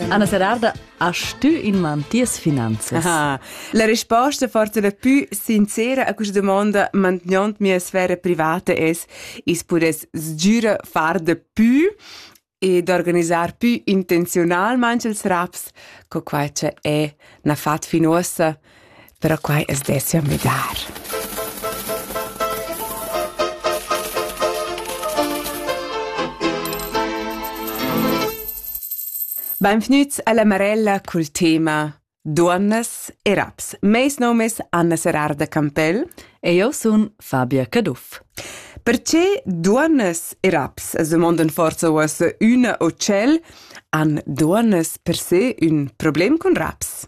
Anna Serarda, hast du in man ties finanzas? Ah, la risposta forza la più sincera a questa domanda mantenendo mia sfera privata es is pudess sgüra far de più e d'organisar più intenzionalmente els raps, co quai che è na fat fin uossa però quai as dessia müdar. Benvgnüts alla Marella cul tema Duonnas e raps. Meis nom es Anna Serarda Campell. E io sun Fabia Caduff. Perché duonnas e raps, as domondan forza uossa üna o tschel, han duonnas per se ün problem cun raps?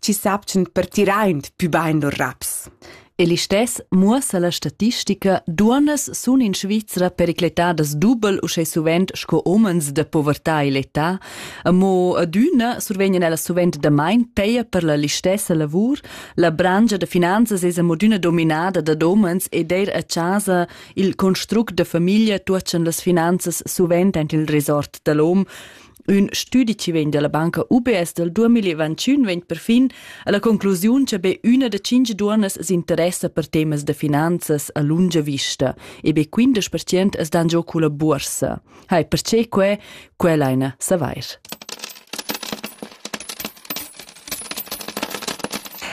chi sapchan per tiraint pü bain lur raps. E listess muossa la statistica, duonnas sun in Svizra pericletadas dubel uschè suvent sco homens da povertà e l'età, amo adüna survegnan ellas suvent damain peia per la listessa lavur, la brangia da finanzas es amodüna dominada dad homens ed eir a chasa il construct da famiglia tuotschan las finanzas suvent aint il resort da l'hom, Ün stüdi chi vegn dalla banca UBS del 2021 vegn perfin alla conclusiun che be üna da cinque duonnas s'interessa per temas da finanzas a lunga vista e be 15% es dan giò culla buorsa. Hai, perché que? Quella eine savair.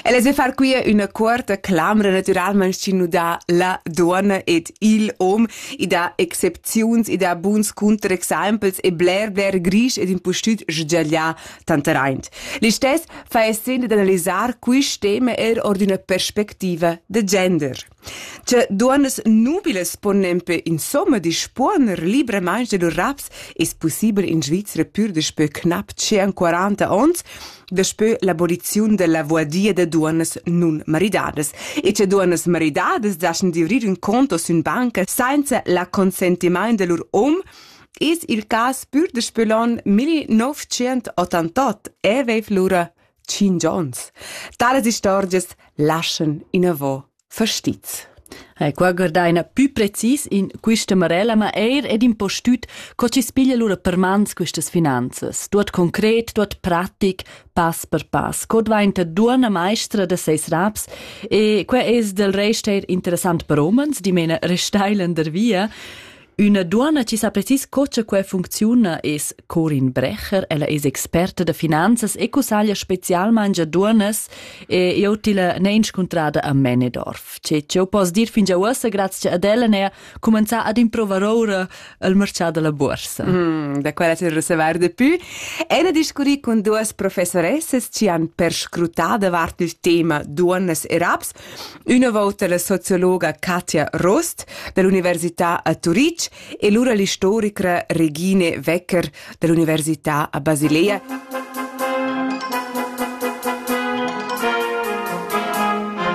El es far quia üna cuorta clamra natüralmaing chi nu dà la duonna ed il hom. I dà excepziuns, i dà buns cunterexaimpels e bler bler grisch ed impustüt sgiaglià tanteraint. Listess fa esser d'analisar quist tema eir or d'üna perspectiva da gender. Tge duonnas nubilas pon nempe insomma dispuoner libramaing da lur raps es pussibel in Svizra pür daspö cnap 41 ons daspö l'aboliziun da la voadia da duonnas nun maridadas. E che duonnas maridadas daschan divrir ün conto sün banca sainza la consentimaint da lur um es il cas pür daspö l'on 1988 e veiv lura tschient ons. Talas istorgias laschan inavò fastiz. E qua guardaina pü precis in quista marella, ma eir ed in po stüt co chi spiglia lura per mans quistas finanzas, tuot concret, tuot pratic, pass per pass. Co dvainta duonna maestra da seis raps e que es del rest eir interessant per homens, dimena restailern der via. Üna duonna chi sa precis co cha quai funcziuna es Corin Brecher. Ella es experta da finanzas e cussaglia specialmaing a duonnas e eu tilla n'he inscuntrada a Mänedorf. Che eu poss dir fingià uossa grazcha ad ella n'he cumanzà ad improvar oura il marchà da la buorsa. Mm, da quella til reservar de pü. E ne discurri cun duos professoressas chi han perscrutà davart il tema duonnas e raps Üna vouta la sociologa Katja Rost dall'università a Turitg e lura l'istorica Regine Wecker dall'università a Basilea.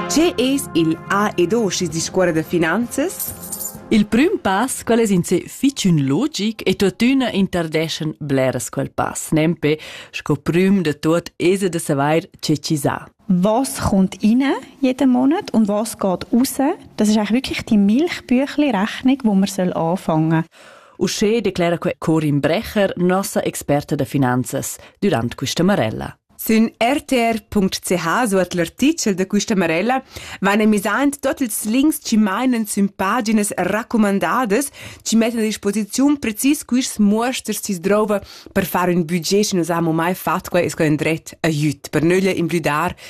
Che es il A ed O schi's discuorra da finanzas? Il prüm pass, quel es in se fich ün logic e tuottüna interdeschan bleras quel pass, nempe sco prüm da tuot esa da savair che chi sa. was kommt rein jeden Monat und was geht raus. Das ist eigentlich wirklich die Milchbüchli-Rechnung, wo man soll anfangen soll. Usche declara Corin Brecher, nossa Experte de Finanzes, durante questa Marella. Sün rtr.ch suot l'artichel de quista Marella van emisaint tot ils links chi mainen sün paginas raccomandadas, chi mettan a disposiziun precis quist muosters chi s'drouva per far ün budget chi nus haun mai fat quai es quai ün dret, aiüt, per nöglia imblüdar